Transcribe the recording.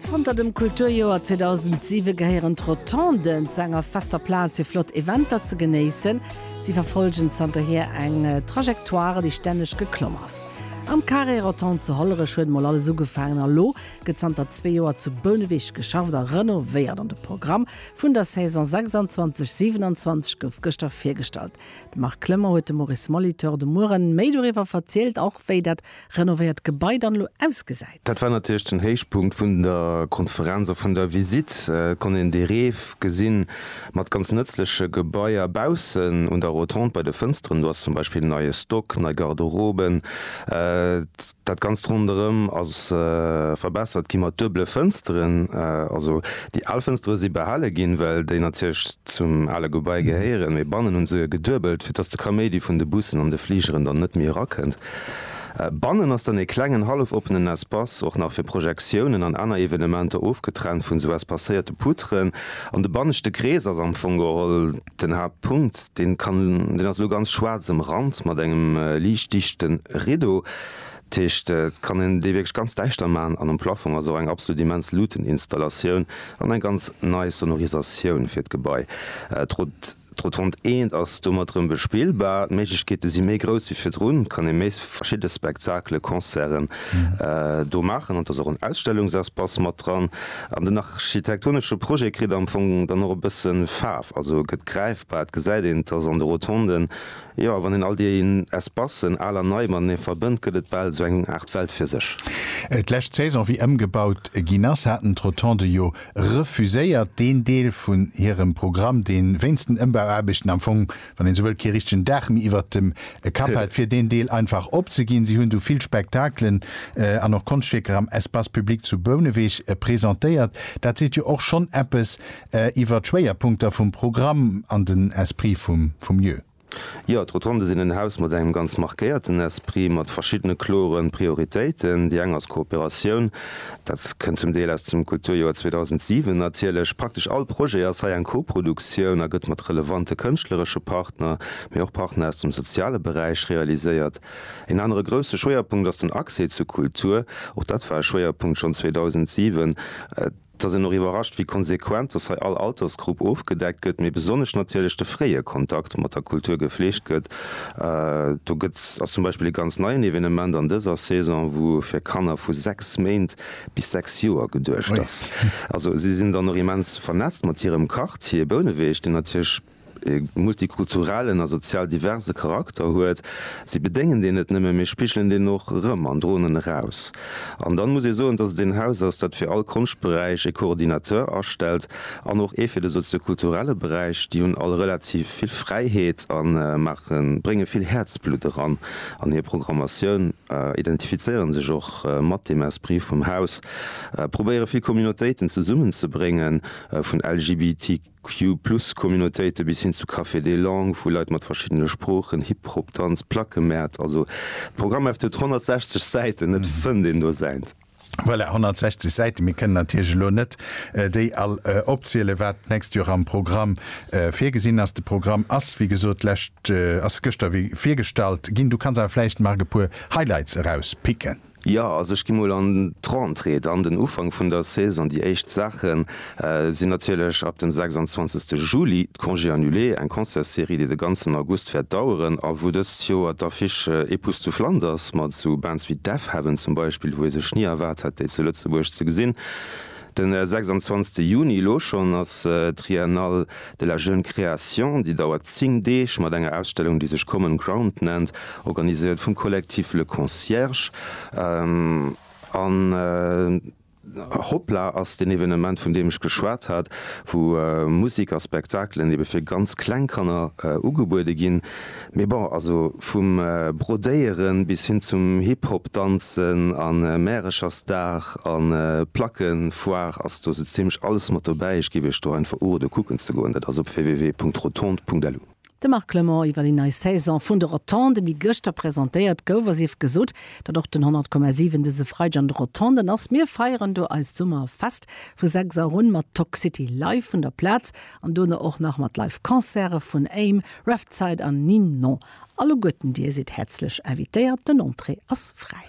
Zanter dem Kulturjoer 2007 gehéieren d'Rotonden zu enger fester Plaz fir flott Eventer ze genéissen. Si verfollgen zanterhier eng Trajectoire, déi stänneg geklomm ass. Am Carré Rotondes zu Hollerech huet mol alles ugefaangen a lo gëtt zanter zwee Joer zu Bouneweg geschafft a renovéiert an de Programm vun der Saison 26, 27 gouf gëschter virgestallt. De Marc Clement huet dem Maurice Molitor de Mueren méi doriwwer verzielt, och wéi dat renovéiert Gebai dann elo ausgesäit. Dat war natierlech den Héichpunkt vun der Konferenz a vun der Visitt. Et konnt een dee Reef gesinn, mat ganz nëtzleche Gebaier baussen un der Rotonde. Bei de Fënsteren do ass zum Beispill en neie Stock, nei Garderoben. Dat Ganzt ronderëm ass verbessert gi mat duebele Fënsteren. Also déi al Fënstere si behale ginn, well déi natierlech zum ale Gebai gehéieren, mee bannen hu se geduebelt, fir dass de Kaméidi vun de Bussen an de Fligeren dann net méi erakënnt. Bannen ass dann ee klengen hallef-oppenen Espace, och nach fir Projektiounen an aner Evenementer, ofgetrennt vun esou espacéierte Poutren. An de banneschte Krees ass am Fong geholl den Haaptpunkt. Deen kann, deen ass elo ganz schwaarz ëmrannt mat engem liicht dichte Rideau. Dat heescht, et kann een dee wierklech ganz däischter maachen. An um Plafong ass och eng absolut immens Luuteninstallatioun an eng ganz nei Sonorisatioun fir d'Gebai. D'Rotonde Eent ass domat rëm bespillbar. D'Méiglechkeete si méi grouss wéi virdrun. Et kann ee méi verschidde Spektakelen, Concerten do maachen an et ass och en Ausstellungsespace mat dran. An den architektonesche Projet kritt am Fong dann och e bësse Faarf, also gëtt gräifbar. Et gesäit een, dass an de Rotonden, jo, wann een all déi Espacen, al an nei, matenee verbënnt, gëtt et bal esou eng Aart Welt fir sech. D'lescht Saison, wéi ëmgebaut ginn ass, haten d'Rotonde jo refuséiert deen Deel vun hirem Programm, dee wéinst den Ëmbauaarbechten am Fong, wann een esou wëllt, kee richtegen Daach méi iwwert dem Kapp hat, fir deen Deel einfach opzeginn. Si hunn du vill Spektakelen an och Konschtwierker am Espace public zu Bouneweg presentéiert. Dat seet jo och schonn eppes iwwer d'Schwéierpunkter vum Programm an den Esprit vum Lieu. Jo, d'Rotonde sinn en Haus mat engem ganz markéierten Esprit, mat verschiddene kloren Prioritéiten. Déi eng ass Kooperatioun. Dat kënnt zum Deel aus dem Kulturjoer 2007 natierlech. Praktesch all Projet ass hei eng Koproduktioun a gëtt mat relevante kënschtleresche Partner, mee och Partner aus dem soziale Beräich realiséiert. Een anere grousse Schwéierpunkt ass den Accès zur Kultur. Och dat war e Schwéierpunkt schonn 2007. Et ass een och iwwerrascht, wéi konsequent dass hei all Altersgrupp ofgedeckt gëtt, mee besonnesch natierlech de fréie Kontakt mat der Kultur gefleegt gëtt. Do gëtt ass zum Beispill e ganz neien Evenement an dëser Saison, wou fir Kanner vu 6 Méint bis 6 Joer geduecht ass. Also si sinn dann och immens vernetzt mat hirem Quartier Bouneweg, deen natierlech. e multikulturellen a sozial diverse Charakter huet, si bedéngen deen net nëmme, mee spigelen deen och erëm an droen en eraus. An dann muss ee soen, dass et een Haus ass, dat fir all Konschtberäich e Coordinateur astellt an och ee fir de soziokulturelle Beräich. Déi hunn all relativ vill Fräiheet a maache, brénge vill Häerzblutt eran an hir Programmatioun, identifizéiere sech och mat deem Esprit vum Haus, probéiere vill Communautéiten zesummenzebréngen, vun LGBT. Q-Plus-Communautéite bis hin zu Cafés des Langues, wou Leit mat verschiddene Sproochen, Hip Hop, Danz, Plackemäert, also d'Programmheft huet 160 Säiten, et fënnt een do säint. Voilà, 160 Säiten, mir kënnen natierlech elo net déi all opzielen, wat d'nächst Joer am Programm virgesinn ass. De Programm ass wéi gesot d'lescht, ass gëschter virgestallt ginn. Du kanns awer vläicht, Marc, e puer Highlights erauspicken. Jo, also ech gi mol an d'Rentrée, dann den Ufank vun der Saison. Déi éischt Saache sinn natierlech ab dem 26 Juli d'Congés annulés, eng Concertsserie, déi de ganzen August wäert daueren a wou dëst Joer d'Affiche E Puss zu Flanders mat esou Bands wéi Deafheaven zum Beispill, wou ee sech ni erwaart hätt, déi zu Lëtzebuerg ze gesinn. De 26 Juni, elo schonn, ass d'Triennale de la jeune création, déi dauert 10 Deeg, mat enger Ausstellung, déi sech Common Ground nennt, organiséiert vum Collectif Le Concierge. An Hoppla ass deen Evenement, vun deem ech geschwat hat, wou Musek a Spektakelen ebe fir ganz kleng Kanner ugebuede ginn. Mee bon, also vum Brodéieren bis hin zum Hip-Hop danzen an Märechersdag an Plackenfoire ass do sou zimlech alles mat dobäi. Ech giff iech do einfach urode kucken ze goen, dat ass op www.rotonde.lu. De Marc Clement iwwer déi nei Saison vun de Rotonden, déi gëschter presentéiert gouf. A sief gesot, datt och den 100,7 dëse Freideg an de Rotonden ass. Mir feieren do eist Summerfest vu 6 Auer un mat Toxcity live vun der Plaz. An dono och nach mat Live Concerte vun Aim, Revtide an Ninon. Alleguerten dir sidd häerzlech invitéiert, den Entrée ass fräi.